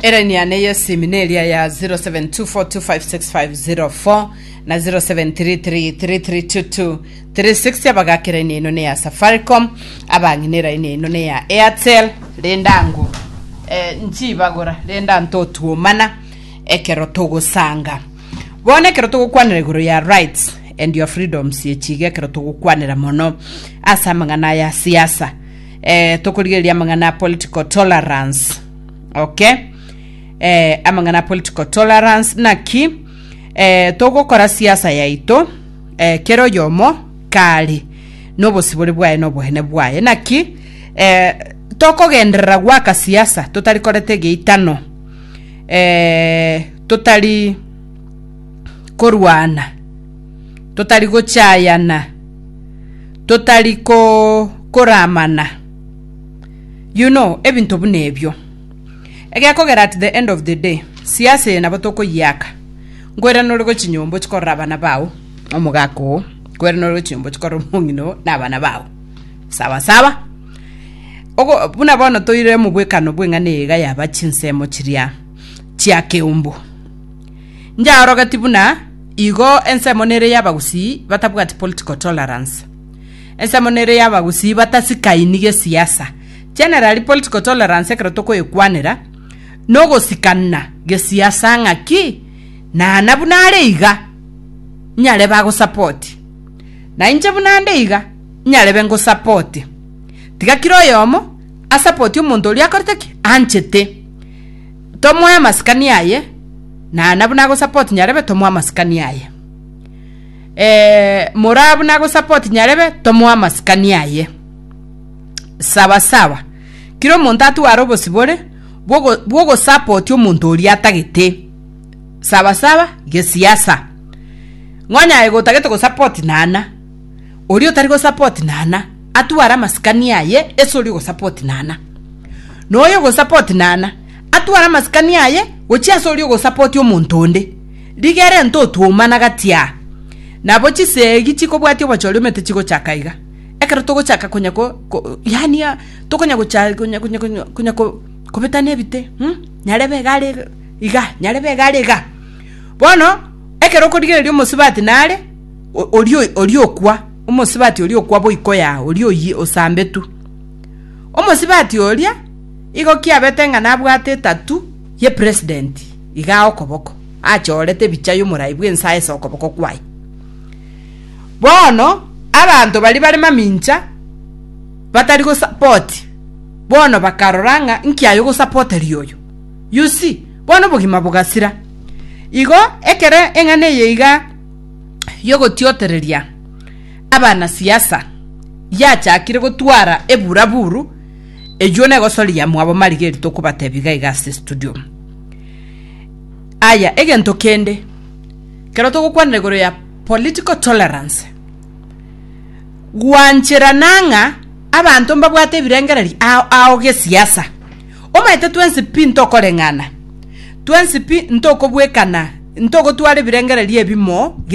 Elaini yane y'esimi neria ya 0724256504 na 0733332236 abagaka elaini eno ne ya Safaricom abang'ina elaini eno ne ya Airtel rende ango eh, nchibagora rende antotuomana ekero togosanga bono ekero togokwanera igoro ya rights and your freedoms echiga ekero togokwanera mono ase amang'ana aya siasa eh, tokorigereria amang'ana a political tolerance okay eh, amang'ana a political tolerance naki eh, togokora siasa yaito eh, kera oyomo kare nobosibore bwaye nobohene bwaye naki eh, tokogenderera gwaka siasa totari korete geitano eh, totari korwana totari gochayana totari koramana you know ebinto buna ebio egekogera at the end of the day siasa eye nabo tokoyiaka nkoira nore gochia nyomba ochia korora abana bao na omogaka oo nkoira nore gochia nyomba ochia korora omong'ina oo na abana bao sawa sawa ogo buna bono toire mobwekano bw'eng'ana eye iga yaba chinsemo chiria chia keumbu. Nyaorogetie buna igo ensemo nere y'abagusii batabwati political tolerance. Ensemo nere y'abagusii batasikaini gesiasa. Generally political tolerance ekero tokoyekwanera nogosikana gesiasa ng'aki nana buna are iga nyarebe agosapoti na inche buna nde iga nyarebe ngosapoti. Tiga kira oyomo asapoti omonto oria akorete ki? Anchete. tomoe amasikani aye na nabu nagosupport nyarebe tomoe amasikani aye eh, morabu nagosupport nyarebe tomoe amasikani aye sawa sawa kira omonto atware obosibore bwogo- bwogosapoti omonto oria atagete sawa sawa gesiasa ng'onyaye gotagete gosapoti nana oria otari gosapoti nana atware amasikani aye ase oria ogosapoti nana, na oyo ogosapoti nana atware amasikani aye gochia ase oria ogosapoti omonto onde. Rigere ntwe otwoumana gati aa. Nabo chisegi chikobwatia obochori omete chigochaka iga. Ekero togochaka konya ko, ko, yaani ah, tokonya gocha, konya, konya, konya, konya ko, kobetana ebite, um, nyarebe iga are iga, nyarebe iga are iga. Bono, ekero okorigereria omosubati nare. oria okwa, omosibati oria okwa boiko ya oria oyio osambetu. Omosibati oria igo kiabete ng'a nabwate etatu ye president iga okoboko, achoorete ebicha y'omorai bw'ense ase okoboko kwaye. Bono abanto baria bare mamincha batari go support bono bakarora ng'a inki aye ogosapoteria oyo. You see? Bono obogima bogasira. Igo ekero eng'ana eye iga. y'ogotiotereria abanasiasa yachakire gotwara eburaburu, eyio negosoria mwabo Marigari tokobatebia iga iga ase estudio. Aya, egento kende, ekero togokwanera igoro ya political tolerance, gwancherana ng'a abanto mbabwate ebirengererio ao ao gesiasa. Omanyete twensi pi ntokoreng'ana, twensi pi ntokobwekana, ntogotwara ebirengererio ebimo gie